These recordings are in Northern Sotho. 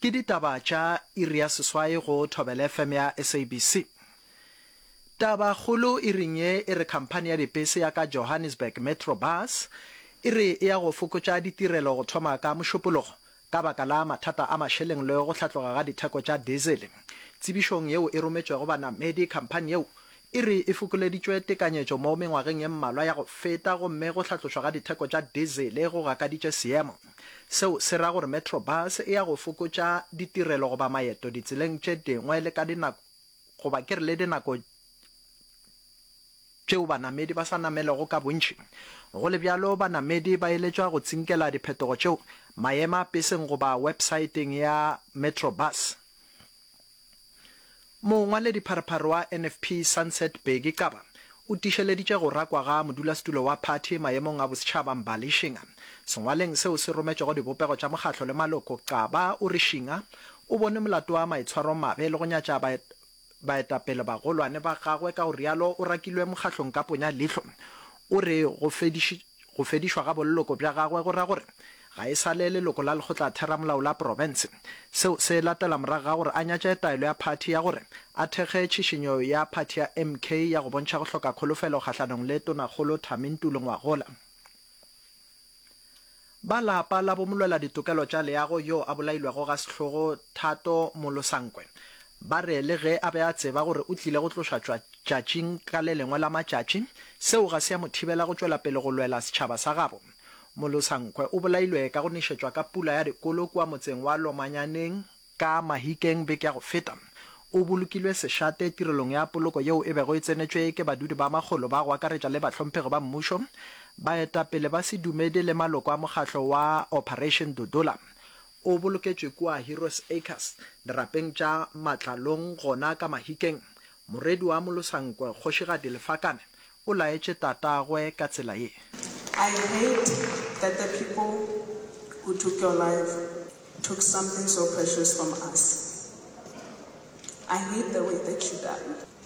Ke ditaba tša iri ya seswai go Thobela FM ya SABC. Tabakgolo iring ye e re khamphani ya dipese ya ka Johannesburg Metro Bus e re e ya go fokotša ditirelo go thoma ka Mošupologo ka baka la mathata a mašeleng le go hlatloga ga ditheko tša dizele. Tsebišong yeo e rometšwego banamedi, khamphani yeo e re e fokoleditšwe tekanyetšo mo mengwageng ye mmalwa ya go feta gomme go hlatlošwa ga ditheko tša dizele go gakaditše seemo. Seo se ra gore Metrobus e ya go fokotša ditirelo goba maeto ditseleng tše dingwe le ka dinako goba ke re le dinako tšeo banamedi ba sa namelego ka bontši. Go le bjalo, banamedi ba eletšwa go tsinkela diphetogo tšeo maema-peseng goba websaeteng ya Metrobus. Mongwaledipharopharo wa NFP Sunset Bheki Xaba o tiišeleditše go rakwa ga modulasetulo wa phathi maemong a bosetšhaba Mbali Shinga. Sengwaleng seo se rometšwego dibopego tša mokgatlo le maloko, Xaba o re Shinga o bone molato wa maitshwaromabe le go nyatša baetapele bagolwane ba gagwe ka go rialo o rakilwe mokgatlong ka ponya leihlo. O re go fediš. Go fedišwa ga bolloko bja gagwe go ra gore ga e sa le leloko la lekgotlatheramolao la profense. Seo se latela morago ga gore a nyatše taelo ya phathi ya gore a thekge tšhišinyo ya phathi ya MK ya go bontšha go hloka kholofelo kgahlanong le Tonakgolo Thami Ntuli Ngwagola. Ba lapa la bomolweladitokelo tša leago yoo a bolailwego ga sehlogo Thato Molosankwe Ba re le ge a be a tseba gore o tlile go tlošwa tšatšing ka le lengwe la matšatši, seo ga se ya mo thibela go tšwela pele go lwela setšhaba sa gabo. Molosankhwe o bolailwe ka go nešetšwa ka pula ya dikolo kua motseng wa Lomanyaneng, ka Mahikeng beke ya go feta. O bolokilwe sešate tirelong ya poloko yeo e bego e tsenetšwe ke badudi ba makgolo ba go akaretša le bahlomphegi ba mmušo, baetapele ba sedumedi le maloko a mokgatlo wa Operation Dudula. O boloketšwe kua Heroes Acres, dirapeng tša Matlalong gona ka Mahikeng. Morwedi wa Molosankwe, Kgošigadi Lefakane, o laetše tatagwe ka tsela ye. I heard that the people who took your life took something so precious from us. I hate the way that you died.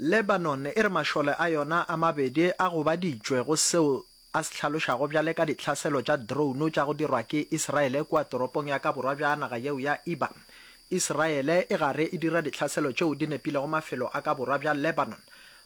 Lebanon e re mašole a yona a mabedi a gobaditšwe go seo a se hlalošago bjale ka dihlaselo tša drone tša go dirwa ke Isiraele kua toropong ya ka borwa bja naga yeo ya Iba. Isiraele e gare e dira dihlaselo tšeo di nepilego mafelo a ka borwa bja Lebanon,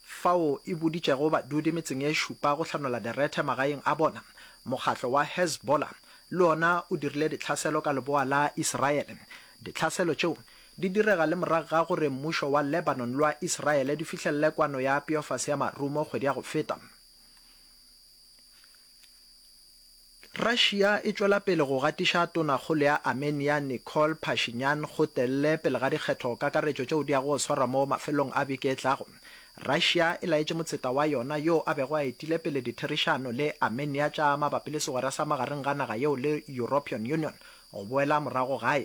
fao e boditšego badudi metseng e šupa go hlanola direthe magaeng a bona. Mokgatlo wa Hezbollah le ona o dirile dihlaselo ka leboa la Isiraele. Dihlaselo tšeo Di direga le morago ga gore mmušo wa Lebanon le wa Israele di fihlelele kwano ya peofase ya marumo kgwedi ya go feta. Russia e tšwela pele go gatiša Tonakgolo ya Armenia Nikol Pashinyan gotelele pele ga dikgetho kakaretšo tšeo di yago go swarwa mo mafelelong a beke e tlago. Russia e laetše motseta wa yona yo a bego a etile pele ditherišano le Armenia tša mabapi le segwera sa magareng ga naga yeo le European Union go boela morago gae.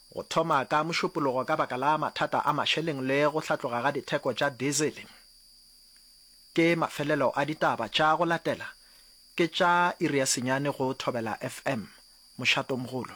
go thoma ka mošupologo ka baka la mathata a mašeleng le go hlatloga ga ditheko tša dizele. Ke mafelelo a ditaba tša go latela, ke tša iri ya senyane go Thobela FM. Mošatomogolo.